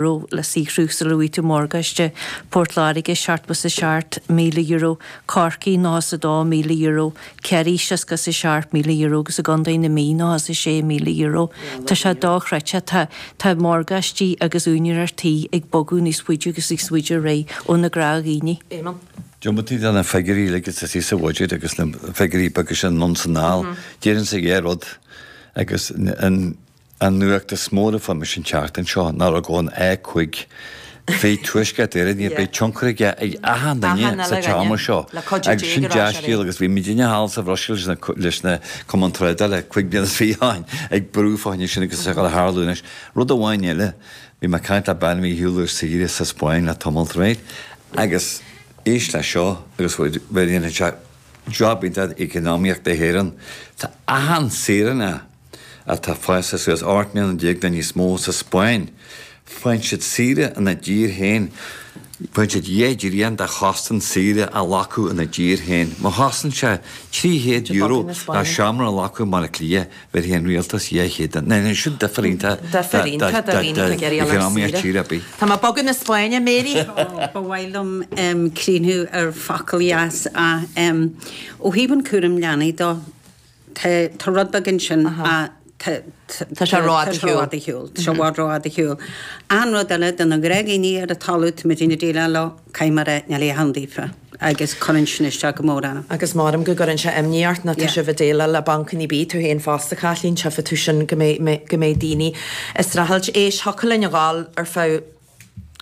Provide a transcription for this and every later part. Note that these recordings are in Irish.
raibh le saothrú sula bhfaighidh tú morgáiste, Port Láirge, seachtó is a seacht, €1,000, Corcaigh, nócha is a 2, €1,000, Ciarraí, seasca is a seacht, €1,000, agus i gContae na Mí, nócha is a 6, €1,000. Tá sé dochreidte, tá, tá morgáistí agus úinéireacht tí ag bogadh níos faide agus níos faide ar aghaidh ó na gnáthdhaoine. Éamonn. Diomaite de na figiúirí uilig atá thíos sa bhuiséad agus na figiúirí beaga sin anonn 's anall, déarfainnse an chéad rud agus an, An nuacht is mó le fáil mis an tseachtain seo ná rud ón A cúig. Bhí tuaisceart Éireann níor bith tionchar aige ar achan duine sa téama seo agus sin dea-scéal agus bhí muidne thall sa Bhruiséil leis na cumainn tráchtála cúig bliana ó shin ag brú fá choinne sin agus ag tarlú anois. Rud amháin eile, bhí mé ag caint le bean, bhí mé ar shiúl ar saoire sa Spáinn le tamall réidh agus éist leis seo agus bhfuil bhfuil a dhéanfadh sé job iontach d'eacnamaíocht na hÉireann. Tá achan saoránach atá fásta suas ocht mbliana déag nó níos mó sa Spáinn, faigheann siad saoire ina dtír féin, faigheann siad dhá dtrian de chostas saoire a ghlacadh ina dtír féin. Má chosain sé €300 ná seomra a ghlacadh i mBaile Átha Cliath, bhéarfaidh an rialtas dhá chéad duit. Dhéanfadh sin difear iontach d'eacnamaíocht tír ar bith? Tá mé ag bogadh na Spáinne, Mary! Ba mhaith liom críochnú ar focal dheas. Ó thaobh an cúram leanaí dó, Tá, tá rud beag ansin ach, tá, tá sé rófhada ar shiúl, tá sé rófhada ar shiúl, tá sé i bhfad rófhada ar shiúl. An rud eile do na gnáthdhaoine ar an talamh atá muidne ag déileáil leo, caithfidh mar aithne le Leon daofa agus cuireann sin isteach go mór orm. Agus measaim go gcuireann sé imní ort nó tá sibh ag déileáil le bancanna bia, tú fhéin fosta Caitlín, tchífidh tú sin go mbeidh, go mbeidh daoine ag streachailt. Éist, thiocfadh linn a dhul ar feadh.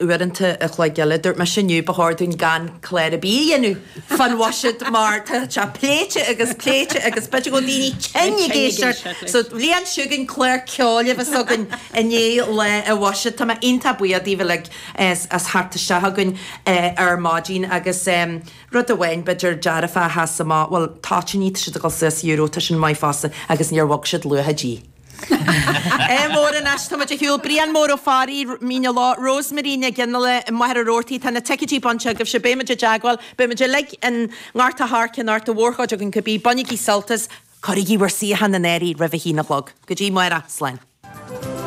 uaireanta a chloig eile. Dúirt mise inniu ba chóir dúinn gan clár ar bith a dhéanamh fán bhuiséad mar tá sé pléite agus pléite agus b'fhéidir go bhfuil daoine tinn ag éisteacht leis. So an bhliain seo chugainn, clár ceoil a bheas againn i ndiaidh lá an bhuiséid. Tá mé iontach buíoch daoibh uilig as theacht isteach chugainn ar maidin agus rud amháin b'fhéidir dearfach a sheas amach, bhuel toitíní, tá siad ag dul suas euro, tá sin maith fosta agus níor bhog siad luach na dí. Ádh mór. Anois táimid ar shiúl, Brian Mór Ó Fearraigh, Mín an Leá, Rosemary Nic Fhionnghaile, i Machaire Rabhartaigh, tá na ticeidí bainte agaibhse, beimid i dteagmháil, beimid uilig i nGort a' Choirce anocht, an mhórchuid againn cibé, bainigí sult as. cuirigí bhur suíocháin in áirithe roimh a haon a chlog. Go dtí amárach, slán.